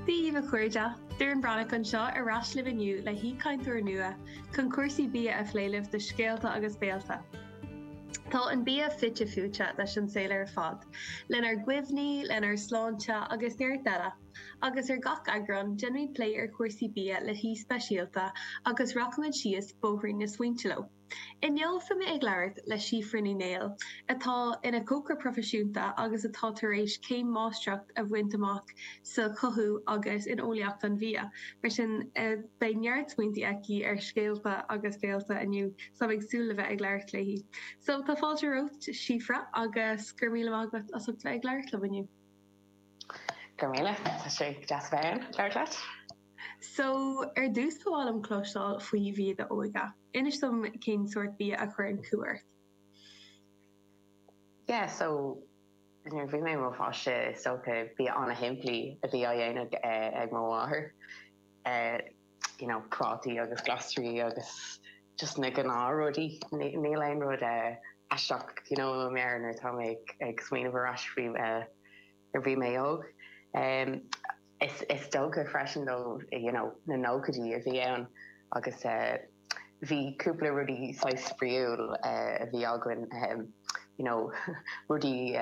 Dia dhaoibh a chairde! Doireann Breathnach anseo, ar ais libh inniu le haoichainteoir nua chun cúrsaí bia a phlé libh do Scéalta agus Béalta. Tá an bia fite fuaite leis an saol ar fad, lenár gcuimhní, lenár sláinte agus neart eile, agus ar gach eagrán déanfaimid plé ar chúrsaí bia le haoi speisialta agus rachaimid síos bóithrín na smaointe leo. Inniu tá mé ag labhairt le Síofra Ní Néill, atá ina cócaire proifisiúnta agus atá tar éis céim máistreacht a bhaint amach sa chothú agus in eolaíocht an bhia, mar sin beidh neart smaointí aici ar Scéalta agus Béalta inniu, so táim ag súil le bheith ag labhairt léi. So tá fáilte romhat, Síofra, agus go raibh míle maith agat as ucht bheith ag labhairt liom inniu. Go raibh míle, tá sé deas a bheith ag labhairt leat. So, ar dtús ba mhaith liom cloisteáil faoi bhia d'óige. Inis dom cén sórt bia a chuireann cumha ort. Yeah, so nuair a bhí mé i mo pháiste is dócha bia an-shimplí a bhí á dhéanamh ag mo mháthair. You know, prátaí agus glasraí agus just na gnáthrudaí. Níl aon rud aisteach, you know, i mo mheabhair nuair atá mé ag smaoineamh ar ais faoi. nuair a bhí mé óg. Is dócha freisin nó you know na nóchaidí a bhí ann agus bhí cúpla rudaí saghas spraíúil a bhí againn you know rudaí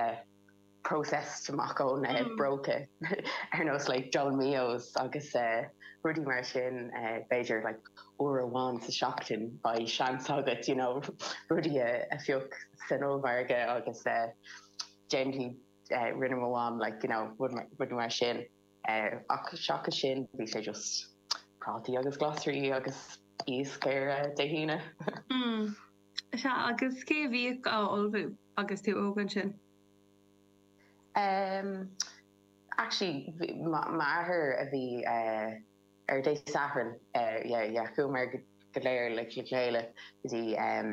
processed amach ón bpróca ar nós like dolmios agus rudaí mar sin b'fhéidir like uair amháin sa tseachtain beidh seans agat you know rudaí a phioc san ollmhargadh agus déanfaidh rinne mo mham like you know rud mar sin ach seachas sin bhí sé just prátaí agus glasraí agus iasc ar eh, Dé hAoine. Hmm. Sea, agus cé a bhíodh á ullmhú agus tú óg ansin? Um, actually, m'athair a bhí uh, ar Dé Sathairn, uh, yeah, yeah, chuamar go léir le chéile go dtí um,